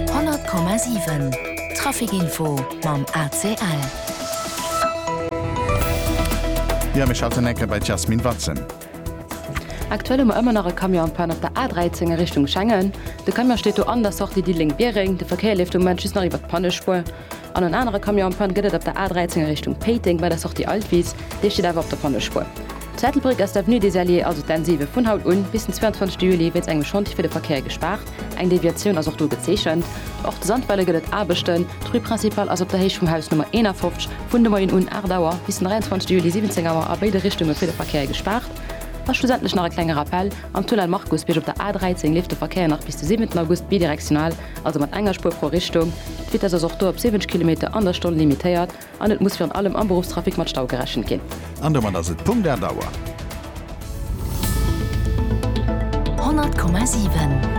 100,7 Trafic Info mam ACL. Jo, mir schalten enk bei d'Jasmine Watze. Aktuell hu mer ëmmer nach e Camion am Panne op der A13 a Richtung Schengen. De Camion steet do an der Sortie Diddeleng-Biereng. De Verkéier leeft de Moment just nach iwwert d'Pannespuer. An en anere Camion am Panne gëtt et op der A13 a Richtung Péiteng bei der Sortie Altwies, dee steet awer op der Pannespur. Zu Ettelbréck ass d'Avenue des Alliés, also d'N7, vun haut un bis den 22 Juli wéinst engem Chantier fir de Verkéier gespaart, eng Deviatioun ass och do gezeechent. Och zu Sandweiler gëtt et Aarbechten, d'Rue Principale ass op der Héicht vum Haus Nummer 51 vun de Moien un 8 Auer bis den 23 Juli 17 Auer a béide Richtunge fir de Verkéier gespaart. A schlussendlech nach e klenge Rappell, Am Tunnel Markusbierg op der A13 leeft de Verkéier nach bis de 7 August bidirektional, also mat enger Spuer pro Richtung. D'Vitess ass och do op 70 Kilometer an der Stonn limitéiert an et muss virun allem am Beruffstrafic mat Stau gerechent ginn. An domat ass et Punkt 8 Auer. 100,7.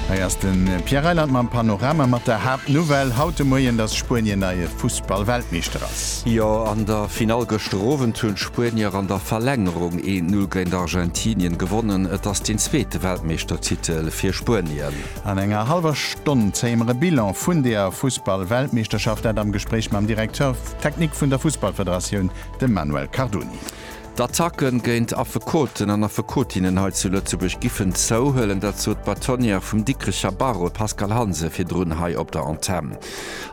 Hei ass de Pierre Reyland mam Panorama mat der Haaptnouvelle haut de Moien, dass Spuenien neie Fuss. Ball Weltmeeschter ass. Jo, an der Finall gëschter Owend hunn d'Spuenier an der Verlängerung een Null géint Argentinien gewonnen. Et ass deen zweete Weltmeeschtertitel fir Spuenien. An enger hallwer Stonn zéie mer e Bilan vun der Fussball Weltmeeschterschaft, dat am Gespréich mam Directeur Technique vun der Fussballfederatioun, dem Manuel Cardoni. D'Attacke géint Affekoten an Affekotinnen hei zu Lëtzebuerg giffen zouhuelen, dat sot d'Bâtonnière vum Dikrecher Barreau, d'Pascale Hansen, virdrun hei op der Antenn.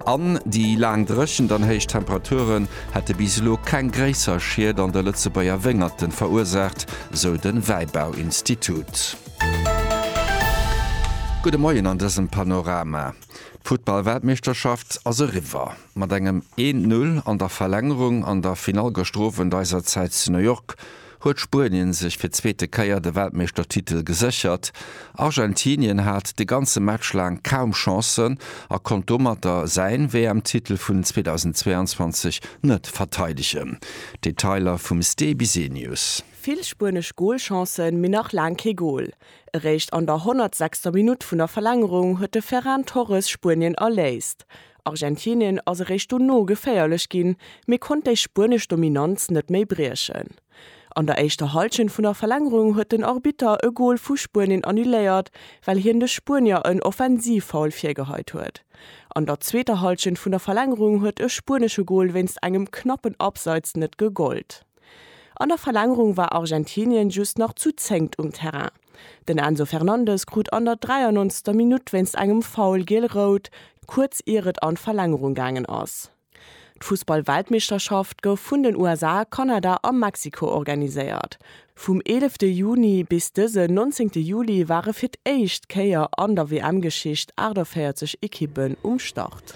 An déi laang Dréchent an héich Temperaturen hätte bis elo keng gréisser Schied an de Lëtzebuerger Wéngerte verursaacht, sou de Wäibauinstitut. Gudde Moien an dësem Panorama. D'Futtball-Weltmeeschterschaft ass eriwwer. Mat engem een Null an der Verlängerung an der Finall gëschter Owend eiser Zäit zu New York huet Spuenien sech fir d'zweete Kéier de Weltmeeschtertitel geséchert. Argentinien hat de ganze Match laang kaum Chancen a konnt domatter säin WM-Titel vun 2022 net verteidegen. Detailer vum Ste Bisenius. Vill spuenesch Golchancen, mee nach laang kee Gol. Eréischt an der 106. Minutt vun der Verlängerung huet de Ferran Torres Spuenien erléist. Argentinien ass eréischt dono geféierlech ginn, mee konnt déi spuenesch Dominanz net méi briechen. An der éischter Hallschent vun der Verlängerung huet den Arbitter e Gol vu Spuenien annuléiert, well hien de Spuenier en Offensivfoul virgeheit huet. An der zweeter Hallschent vun der Verlängerung huet e spuenesche Gol wéinst engem knappen Abseits net gegollt. An der Verlängerung war Argentinien just nach zu zéngt um Terrain. Den Enzo Fernandez krut an der 93. Minutt wéinst engem Foul giel-rout, kuerz ier et an d'Verlängerung gaangen ass. D'Fussball-Weltmeeschterschaft gouf vun den USA, Kanada a Mexiko organiséiert. Vum eelefte Juni bis dësen nonzéngte Juli ware fir d'éischt Kéier an der WM-Geschicht 48 Ekippen um Start.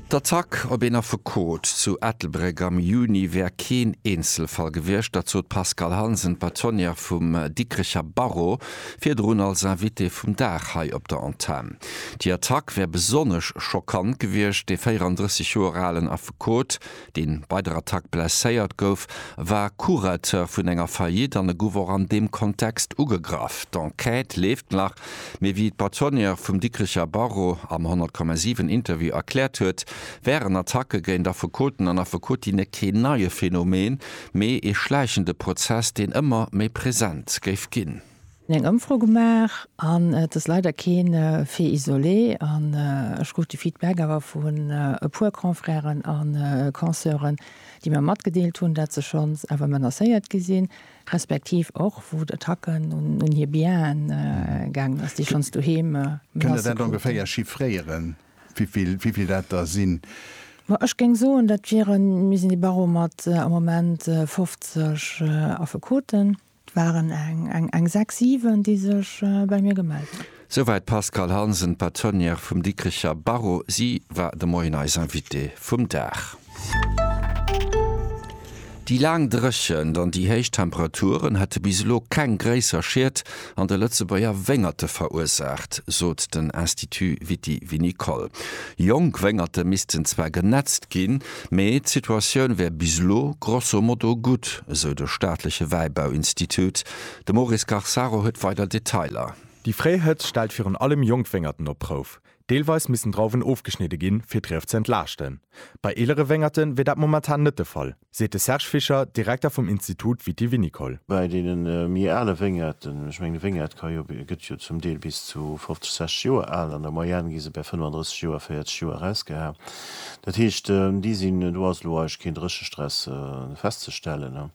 D'Attack op een Affekot zu Ettelbréck am Juni wär keen Eenzelfall gewiescht. Dat sot d'Pascale Hansen, d'Bâtonnière vum Dikrecher Barreau, virdrun als Invitée vum Dag hei op der Antenn. Déi Attack wär besonnesch schockant gewiescht. Dee 34 Joer alen Affekot, dee bei der Attack blesséiert gouf, war Curateur vun enger Faillite an e gouf och an deem Kontext ugegraff. D'Enquête leeft nach. Mee wéi d'Bâtonnière vum Dikricher Barreau am 100,7 Interview erkläert huet, wären Attacke géint Affekoten an Affekotinne keen neie Phänomen, mee ee schläichende Prozess, deen ëmmer méi present géif ginn. Mir hunn eng Ëmfro gemaach an et ass leider kee Fait isolé an ech krut de Feedback awer vun e puer Confrèren a Consoeuren, déi mir matgedeelt hunn, dat se schonns awer menacéiert gi sinn. respektiv och wou d'Attacken un hir Bienen gaangen ass, déi schonns doheem lasse kruten. Kënnt Der dat ongeféier chiffréieren, wéivill dat der sinn? Ma ech géing soen, dat wieren, mir sinn de Barreau mat am Moment 50 Affekoten. Et waren eng sechs, siwen, déi sech bei mir gemellt hunn. Souwäit d'Pascale Hansen, Patronière vum Dikricher Barreau. Si war de Moien eis Invitée vum Dag. Déi laang Dréchent an déi héich Temperaturen hätte bis elo keng gréisser Schied an de Lëtzebuerger Wéngerte verursaacht, sot den Institut Viti-Vinicole. Jonk Wéngerte missten zwar genätzt ginn, mee d'Situatioun wär bis elo grosso modo gutt, esou de staatleche Wäibauinstitut. De Maurice Garsaro huet weider Detailer. Déi fréi Hëtzt stellt virun allem jonk Wéngerten op d'Prouf. Deelweis missten Drauwen ofgeschnidde ginn, fir d'Rief ze entlaaschten. Bei eelere Wéngerte wier dat momentan net de Fall, seet de Serge Fischer, Direkter vum Institut Viti-Vinicole. Bei deene méi ale Wéngerten, ech mengen e Wéngert ka jo, gëtt jo zum Deel bis zu 50, 60 Joer al, an der Moyenne gi se bäi 35 Joer, 40 Joer erausgeha. Dat heescht, déi sinn, do ass elo eigentlech keen Dréchestress festzestellen.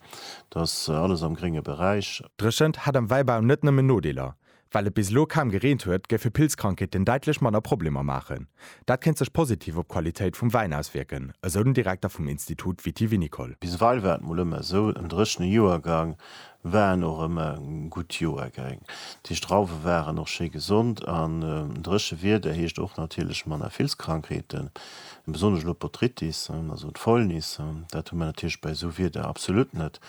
dass alles am grénge Beräich. Dréchent hätt am Wäibau net nëmmen Nodeeler. Well et bis elo kaum gereent huet, géife Pilzkrankheeten däitlech manner Problemer maachen. Dat kéint sech positiv op d'Qualitéit vum Wäin auswierken, esou den Direkter vum Institut Viti-Vinicole. Biseweill war et mol ëmmer esou, en dréchene Joergang war en och ëmmer e gutt Joergeng. Déi Strauwe waren och schéi gesond an dréche Wieder heescht och natierlech manner Pilzkrankheeten. Besonnesch elo d'Botrytis, also d'Fäulnis, dat hu mer natierlech bei esou Wieder absolut net.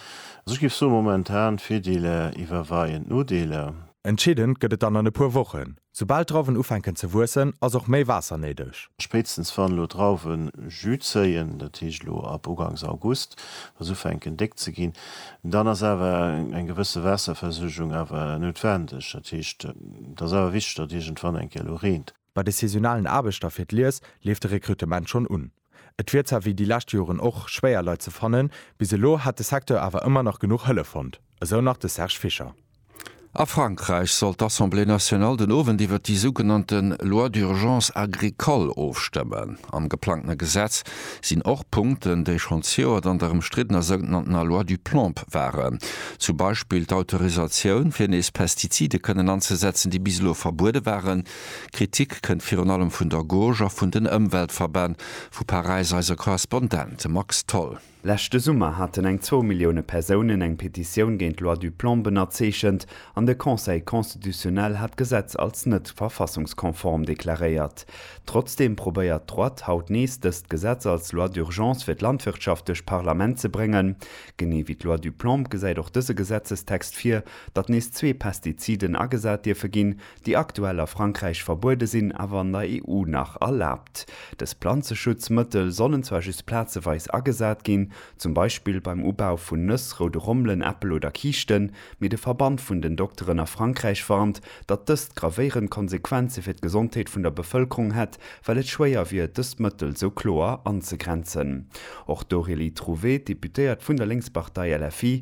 Also ech géif soen, momentan Virdeeler iwwerweien d'Nodeeler. Entscheedend gëtt et dann an e puer Wochen. Soubal d'Drauwen ufänken ze wuessen, ass och méi Waasser néideg. Spéitstens wann elo d'Drauwen Jus zéien, dat heescht elo ab ugangs August, wa se ufänken déck ze ginn, dann ass awer eng gewësse Waasserversuergung awer noutwendeg. Dat heescht, et ass awer wichteg, datt iergendwann eng Kéier elo reent. Bei de saisonalen Aarbechter fir d'Lies leeft de Rekrutement schonn un. Et wier zwar wéi déi lescht Joren och schwéier Leit ze fannen, bis elo hätt de Secteur awer ëmmer nach genuch Hëllef fonnt, esou nach de Serge Fischer. A Frankräich soll d'Assemblée nationale den Owend iwwert déi sougenannte Loi d'urgence agricole ofstëmmen. Am geplangtene Gesetz sinn och Punkten, déi schonn d'Joer dann der ëmstriddener sougenanntener Loi du plomb waren. Zum Beispill d'Autorisatioun, fir nees Pestizide kënnen anzesetzen, déi bis elo verbuede waren. Kritik kënnt virun allem vun der Gauche a vun den Ëmweltverbänn. Vu Paräis eise Korrespondent Max Tholl. Leschte Summer haten eng zwou Millioune Persounen eng Petitioun géint d'Loi du Plan bennerzeechent an de Conseil constitutionnel hat d'Gesetz als net verfassungskonform deklaréiert. Trotzdeem probéiert d'Droite haut nees dëst Gesetz als Loi d'urgence fir d'Landwirtschaft duerch d'Parlament ze bréngen. Genee wéi d'Loi du Plan gesäit och dëse Gesetzestext vir, datt nees zwee Pestiziden agesat dierfe ginn, déi aktuell a Frankräich verbuede sinn, awer an der EU nach erlaabt. Dës Planzeschutzmëttel sollen zwar just plazeweis agesat ginn, zum Beispill beim Ubau vun Nëss, roude Rommelen, Äppel oder Kiischten, mee de Verband vun den Dokteren a Frankräich warnt, datt dëst gravéierend Konsequenze fir d'Gesondheet vun der Bevëlkerung hätt, well et schwéier wier, dëst Mëttel sou kloer anzegrenzen. Och d'Aurélie Trouvé, Deputéiert vun der Lénkspartei LFI,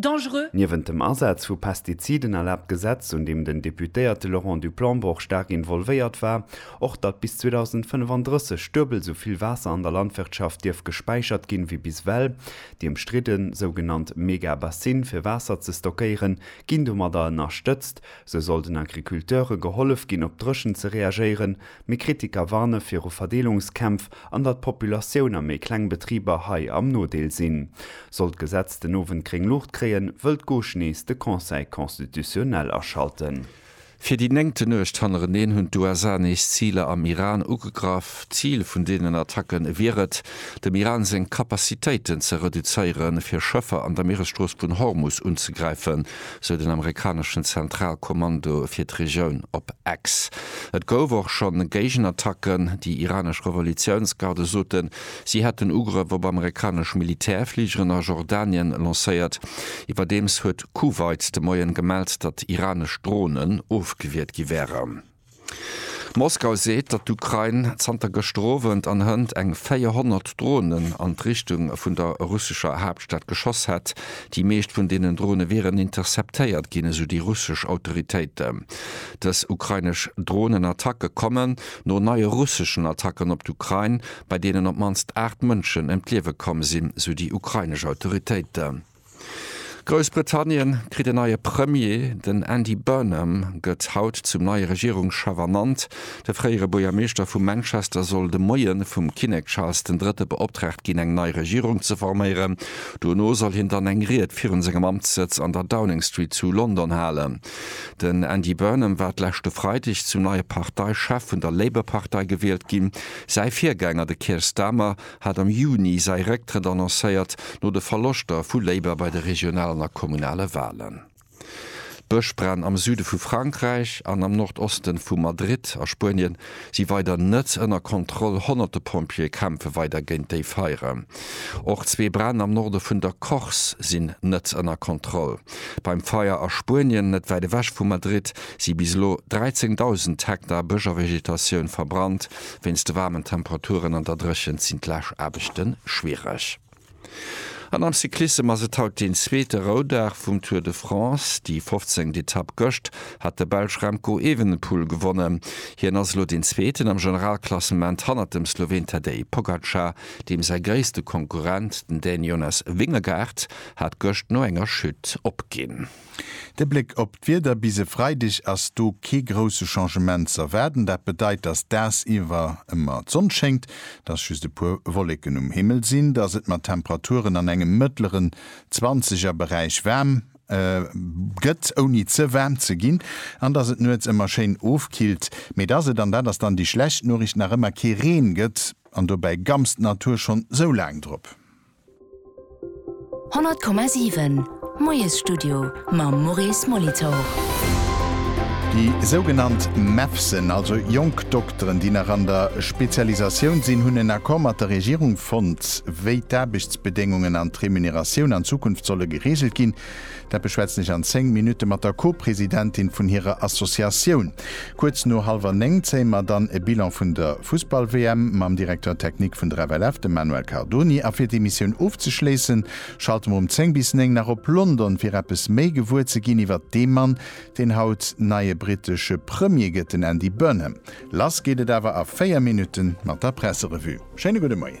dangereux. Niewent dem Asaz vu Pestiziden erlaabt d'Gesetz, un deem den Deputéierte Laurent du Planbroch staark involvéiert war, och datt bis 2035 duebel esou vill Waasser an der Landwirtschaft dierf gespäichert ginn ewéi bis ewell. Déi ëmstridden sougenannt Megabassine fir Waasser ze stockéieren, ginn domadder ënnerstëtzt. Sou soll den Agriculteure gehollef ginn op d'Dréchent ze reagéieren. Mee Kritiker warne viru Verdeelungskämpf an datt d'Populatioun a méi kleng Betriber hei am Nodeel sinn. Sollt d'Gesetz den Owend gréng Luucht kréien, wëll d'Gauche nees de Conseil constitutionnel aschalten. Fir déi néngte Nuecht hannereneen hunn d'USA nees Ziler am Iran ugegraff. D'Zil vun deenen Attacke wier et, dem Iran seng Capacitéiten ze reduzéieren, fir Schëffer an der Mieresstrooss vun Hormus unzegräifen, sou den amerikaneschen Zentralkommando fir d'Regioun op X. Et gouf och scho Géigenattacken. Déi iranesch Revolutiounsgarde soten, si hätten Ugrëff op amerikanesch Militärfligeren a Jordanien lancéiert. Iwwerdeems huet Kuwait de Moien gemellt, datt iranesch Dronen ofgewiert gi wären. Moskau seet, datt d'Ukrain zanter gëschter Owend an Hënt eng 400 Dronen an d'Richtung vun der russescher Haaptstad geschoss hätt. Déi meescht vun deenen Drone wieren interceptéiert ginn, esou déi russesch Autoritéiten. Dës ukrainesch Dronenattacke kommen no neie russeschen Attacken op d'Ukrain, bei deenen op d'mannst 8 Mënschen ëm d'Liewe komm sinn, esou déi ukrainesch Autoritéiten. Groussbritannien kritt en neie Premier. Den Andy Burnham gëtt haut zum neie Regierungschef ernannt. De fréiere Buergermeeschter vu Manchester soll de Moie vum Kinnek Charles den Drëtte beoptraagt ginn, eng nei Regierung ze forméieren. Dono soll hien dann eng Ried virun sengem Amtssëtz an der Downing Street zu London halen. Den Andy Burnham war d'leschte Freideg zum neie Parteichef vun der Labour-Partei gewielt ginn. Säi Virgänger, de Keir Starmer, hat am Juni säi Récktrëtt annoncéiert, no de Verloschter vu Labour bei de regionalen a kommunale Walen. D'Bëschbränn am Süde vu Frankräich an am Nordosten vu Madrid a Spuenien si weider net ënner Kontroll, honnerte Pompjeeë kämpfe weider géint déi Feiere. Och zwee Bränn am Norde vun der Corse sinn net ënner Kontroll. Beim Feier a Spuenien, net wäit ewech vu Madrid, si bis elo 13.000 Hektar Bësch a Vegetatioun verbrannt. Wéinst de waarmen Temperaturen an der Dréchent sinn d'Laaschaarbechte schwiereg. An am Cyclissem ass et haut deen zweete Roudag vum Tour de France. Déi fofzéngt Etapp gëscht hat de Belsch Remco Evenepoel gewonnen. Hien ass elo deen Zweeten am Generalklassement hannert dem Sloween Tadej Pogacar, deem säi gréisste Konkurrent, den Dän Jonas Vingegaard, hat gëscht no enger Chute opginn. De Bléck op d'Wieder, Bis e Freideg ass do kee grousse Changement z'erwaarden. Dat bedeit, dass dagsiwwer ëmmer d'Sonn schéngt, dass just e puer Wolleken um Himmel sinn, dass et mat Temperaturen an engem mëttleren zwanzeger Beräich waarm gëtt, ouni ze waarm ze ginn, an dass et nuets ëmmer schéin ofkillt, mee dass et, an dat ass dann déi schlecht Noricht, nach ëmmer kee Reen gëtt, an dobäi gamst d'Natur schonn sou laang drop. 100,7 Moiesstudio mam Maurice Molitor. Déi sougenannt MEFSen, also jonk Dokteren, déi nach an der Spezialisatioun sinn, hunn en Accord mat der Regierung fonnt, wéi d'Aarbechtsbedéngungen an d'Remuneratioun an Zukunft solle gereegelt ginn. Dat beschwätzen ech an 10 Minutte mat der Co-Presidentin vun hirer Associatioun. Kuerz no hallwer 9 zéie mer dann e Bilan vun der Fussball-WM mam Directeur technique vun der FLF, dem Manuel Cardoni. A fir d'Emissioun ofzeschléissen, schalte mer um 10 bis 9 nach op London, fir eppes méi gewuer ze ginn iwwert dee Mann, deen haut neie brittesche Premier gëtt, den Andy Burnham. Lass geet et awer a 4 Minutte mat der Presserevue. Schéine gudde Moien.